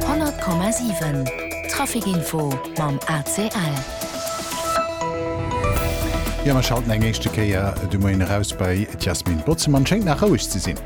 100,7 Trafic Info mam ACL. Jo, mer schalten eng éischte Kéier de Moien eraus bei d'Yasmin Botzemann. Schéngt nach roueg ze sinn.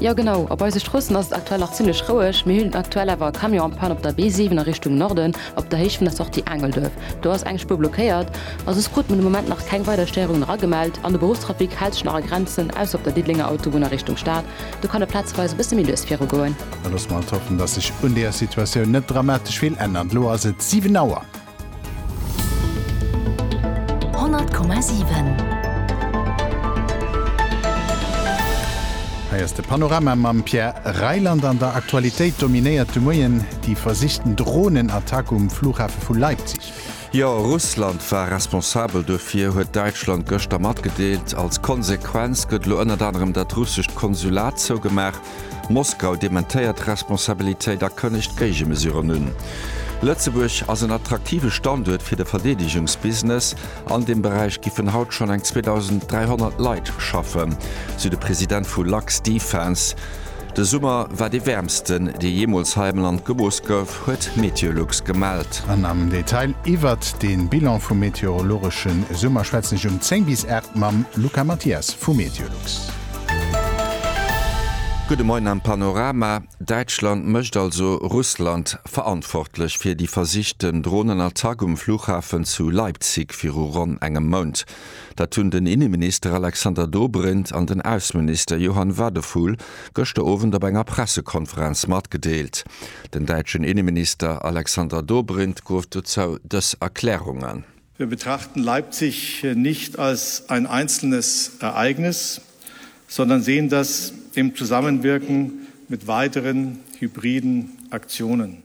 Jo genau, op eise Stroossen ass et aktuell nach zimmlech roueg. Mir hunn aktuell awer e Camion en panne op der B7 a Richtung Norden, op der Héicht vun der Sortie Aangelduerf. Do ass eng Spuer blockéiert a soss krute mer de Moment nach keng weider Stéierungen eragemellt. An de Beruffstrafic hält sech nach a Grenzen, ausser op der Diddelenger Autobunn a Richtung Stad, Do kann et plazeweis e bësse méi lues viru goen. Da loosse mer alt hoffen, dass sech un deeër Situatioun net dramatesch vill ännert. Elo ass et 7 Auer. 100,7. Hei ass de Panorama mam Pierre Reyland. An der Aktualitéit dominéiert de Moien déi versichten Dronenattack um Flughafe vu Leipzig. Pierre. Jo, Russland war responsabel dofir, huet Däitschland gëschter matgedeelt. Als Konsequenz gëtt elo ënnert anerem dat russescht Konsulat zougemaach. Moskau dementéiert d'Responsabilitéit a kënnegt Géigemesuren un. Lëtzebuerg ass en attraktive Standuert fir de Verdeedegungsbusiness. An deem Beräich giffen haut schonn eng 2.300 Leit schaffen, sou de President vu Luxdefence. De Summer war dee wäermsten, dee jeemools hei am Land gemooss gouf. App huet Meteolux gemellt. An am Detail iwwert de Bilan vum meteorologesche Summer schwätzen ech um 10 bis 8 mam Luca Mathias vu Meteolux. Gudde Moien am Panorama, Däitschland mécht also Russland verantwortlech fir déi versichten Dronenattack um Flughafen zu Leipzig viru ronn engem Mount. Dat hunn den Inneminister Alexander Dobrindt an den Ausseminister Johann Wadephul gëschter Owend op enger Pressekonferenz matgedeelt. Den däitschen Inneminister Alexander Dobrindt gouf dozou dës Erklärungen. Wir betrachten Leipzig nicht als ein einzelnes Ereignis, sondern sehen das im Zusammenwirken mit weiteren hybriden Aktionen.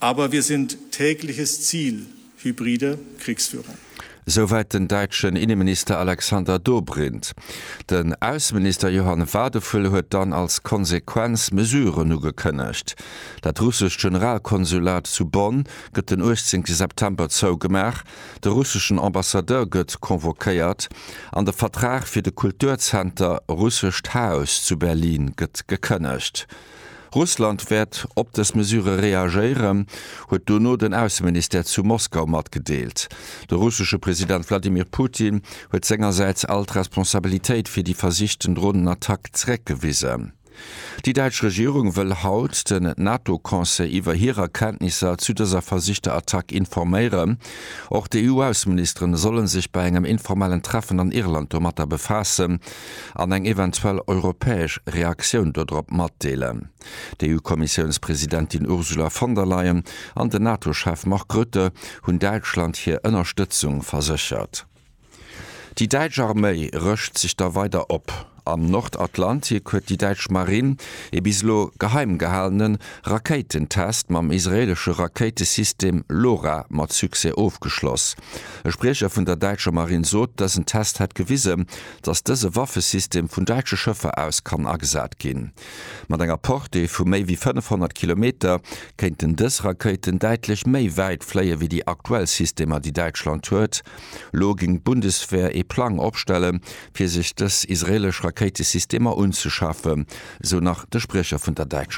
Aber wir sind tägliches Ziel hybride Kriegsführung. Esouwäit den däitschen Inneminister Alexander Dobrindt. Den Ausseminister Johann Wadephul huet dann als Konsequenz Mesuren ugekënnegt. Dat russescht Generalkonsulat zu Bonn gëtt den 18 September zougemaach, de russeschen Ambassadeur gëtt convoquéiert an de Vertrag fir de Kulturzenter Russescht Haus zu Berlin gëtt gekënnegt. Russland wäert op dës Mesure reagéieren, huet dono den Ausseministère zu Moskau matgedeelt. De russesche President Wladimir Putin huet sengersäits all d'Responsabilitéit fir déi versichten Dronenattack zeréckgewisen. Déi däitsch Regierung wëll haut den NATO-Conseil iwwer hir Erkenntnisser zu dëser versichter Attack informéieren. Och d'EU-Ausseministeren solle sech bei engem informellen Treffen an Irland domatter befaassen. an eng eventuell europäesch Reaktioun dodrop matdeelen. D'EU-Kommissiounspresidentin Ursula von der Leyen an den NATO-Chef Mark Rutte hunn Däitschland hir Ënnerstëtzung verséchert. Déi däitsch Arméi rëscht sech da weider op. Am Nordatlantik huet déi däitsch Marinn ee bis elo geheim gehalene Rakéitentest mam israeelesche Rakéitesystem LORA mat Succès ofgeschloss. E Spriecher vun der däitscher Marinn sot, dësen Test hätt gewisen, dass dëse Waffesystem vun däitsche Schëffer aus kann agesat ginn. Mat enger Portée vu méi wéi 500 Kilometer kéinten dës Rakéiten däitlech méi wäit fléie wéi déi aktuell Systemer, déi Däitschland huet. Elo géing d'Bundeswehr ee Plang opstellen, fir sech dës israeelesch Rakéitesystemer unzeschafen, esou nach de Spriecher vun der däitscher.